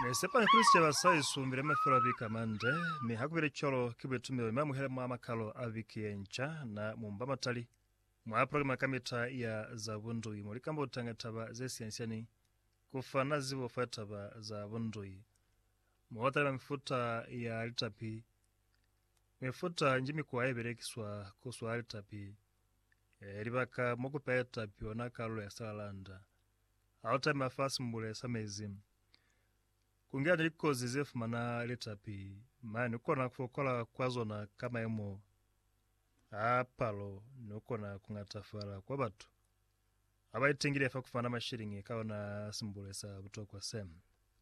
Ne sepani kuli sicaba sa Yesu mbile mafelo a viki amande, mi ha kubile cwalo ki buitumelo mi amuhele mwa makalo a viki yenca na mumba matali mwa programa kamita ya za bundui mo likamba kutanga taba ze siani-siani, ku fana zibo fa litaba za bundui, mo ba talima mifuta ya litapi, mifuta nji mikwa ye belekiswa ku swala litapi, e, libaka mo ku peha litapi ona kalulo ya salalanda. Ha u tama fa simbule sa mezi, ku ngena ni likozi ze fumana litapi, mane ni kona ku fokola kwa zona ka mayemo a palo ni ku kona ku ngatafala kwa batu ba ba itengile fa ku fumana mashiliñi ka ona simbule sa butokwa se.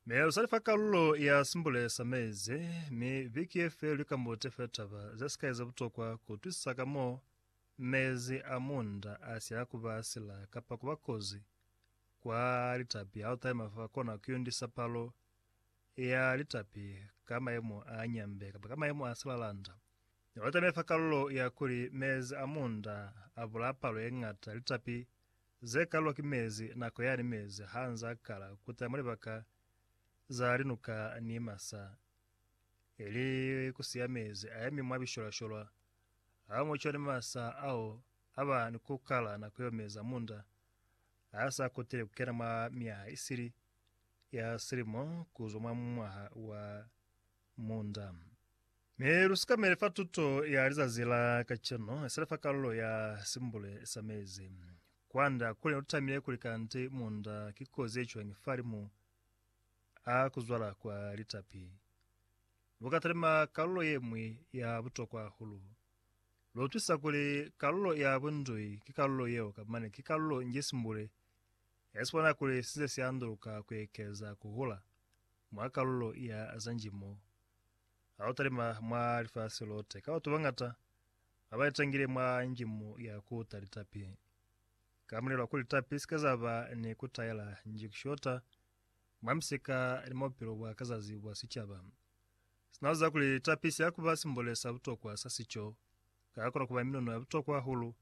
Mi lu sa li fa kalulo ya simbule sa mezi, mi viki ye feli lu ikambute fe taba ze sikai ze butokwa ku utwisisa ka mo Mezi a munda a si a kuba a sila kapa kuba kozi kwa litapi ha u taima fa kona ku yundisa palo ya litapi ka mayemo a nyambe kapa ka mayemo a silalanda. Ne ba taime fa kalulo ya kuli mezi a munda a bulaya palo ye ñata ya litapi ze kalilwa ki mezi nako yani mezi ha nz'a kala ku ta mwa libaka za linuka ni masa, ili ku siya mezi a yemi mwa bisholasholwa Ha mu cwale masa ao a ba ni ku kala nako yo meza munda a sa kutile ku kena mwa myaha isili ya silimo ku zwa mwa mwaha wa munda. Mi lu sikamele fa tuto ya lizazi la kacenu isali fa kalulo ya simbule sa mezi. Kwanda kuli ne lu tamile kuli kanti munda ki kozi ye cwañi falimu a ku zwala kwa litapi. Lukatalima kalulo yeñwi ya butokwa hahulu. Luutwisa kuli kalulo ya bundui ki kalulo yeo kamane ki kalulo nji simbule ya sibona kuli size sianduluka kuekeza kuhula mwa kalulo ya za nji mo. Hautalima mwa lifasi lote, ka batu bañata babaitangile mwa nji mo ya kuta litapi. Kamulelo wakuli litapi sike zaba ni kutaela nji kushota mwa misika ni mwa bupilo bwa ka zazi bwa sicaba. Sina kuziba kuli tapi siya kuba simbole sa butokwa sa sico, ka kona kuba minono ya butokwa hahulu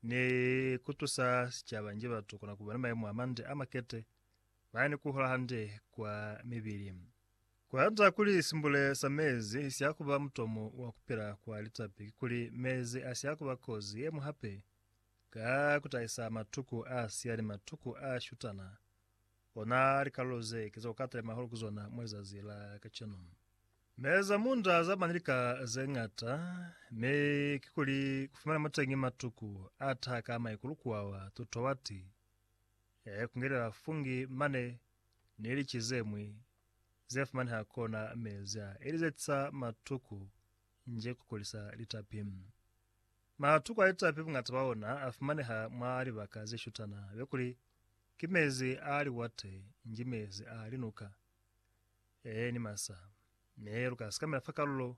ni kutusa sicaba nji batu kona kuba ni mayemo amande amakete, baya ni kuhola hande kwa mibili. Kuhata kuli simbole sa mezi siya kuba mutomo wa kupila kwa litapi kikuli mezi asiya kuba kozi yeñwi hape Ka kutahisa matuku a siya ni matuku a shutana, ona likalolo ze ki za kukatale mahulu ku zona mwa lizazi la kacenu. Me za munda za bani lika ze ñata, mi kikuli kufumana muteñi matuku a taha ka maikulu kuawa tuto wati, e kungelela fungi mane ni lici zemwi ze fumaneha kona mezi a ili ze tisa matuku nje kukulisa litapi. Matuku a litapi bungata bwa ona a fumaneha mwa libaka ze shutana be kuli, ki mezi a liwate, nji mezi a linuka, ee, ni masa. Mi lu ka sikamela fa kalulo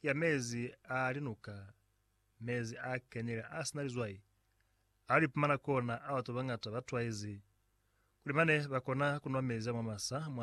ya mezi a linuka, mezi a kenile a si na lizwai, ao li pumana kona a batu ba bangata ba twaizi kuli mane ba kona ku nwa mezi a mwa masa mwa